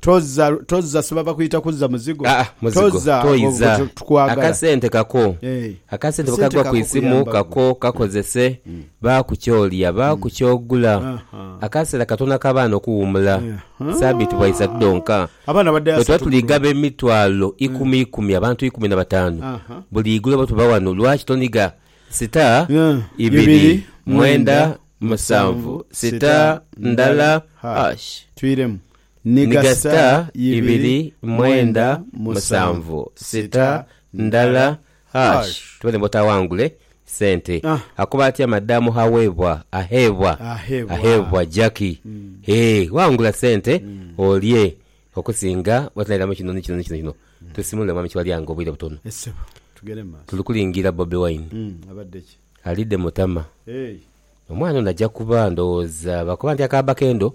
Tozza, tozza siba bakuyita kuzza muzigo. Aa muzigo Tozza gwo, gwo toiza. tu- tukwagala. Akasente kako. Eh, Akasente bwe kasente kagwa ku kako isimu kuyamba kako kakozese baaku ky'olya, baaku ky'ogula. Aha. Akaseera katono ak'abaana okuwuumula. Aha. Sabiiti bwaisatu dhonka. Abaana badde Bwe tuba asatu tuli gaba bulungi. emitwalo ikumi ikumi, abantu ikumi na bataanu, Aha. buli igulo bwe tuba wano, lwaki toniga sita, Yeah. ibiri, Ibiri, mwenda, mwenda, musanvu, musanvu, sita, sita, ndala, ndala, hash. hash. Twiremu. Ni ga sita ibiri mwenda musanvu sita ndala hash tubone bwota awangule sente akoba atya madam hawebwa ahebwa ahebwa Jackie hee wangula sente olye okusinga bwotaniramu kino ni kino ni kino kino tusimule mwami Kiwalyango obwire butono tuli kulingira Bobi Wine alidde mutama omwana ono ajja kuba ndowooza bakoba nti akaaba kendo.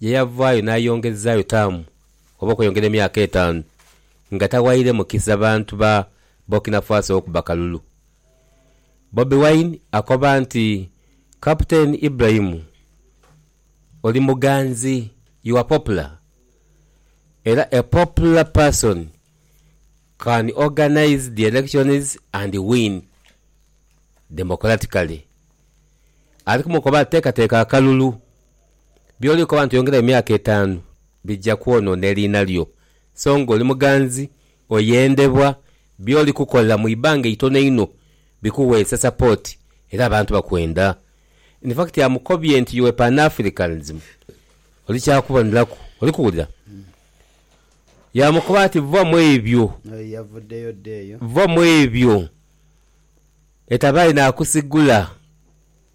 ye yavaayo n'ayongezaayo taamu oba okweyongera emyaka etaanu nga tawaire mukisa bantu ba Burkina Faso okuba kalulu. Bobi Wine akoba nti, Captain Ibrahim oli muganzi, you are popular era a popular person can organise the elections and win democratically. Ali kumukoba ati teekateeka akalulu. By'oli koba nti oyongerayo emyaka etaanu bija kwonoona eriina lyo. So nga oli muganzi, oyendebwa, by'oli kukola mu ibanga eitono einho bikuweesa sapooti era abantu bakwenda. In fact amukobye nti your Pan-Africanism oli kya kuboneraku. Oli kuwulira? Yaamukoba ati vva mu ebyo. N'oyo yavuddeyo dda eyo. Vva mu ebyo. Etabaayi naakusigula.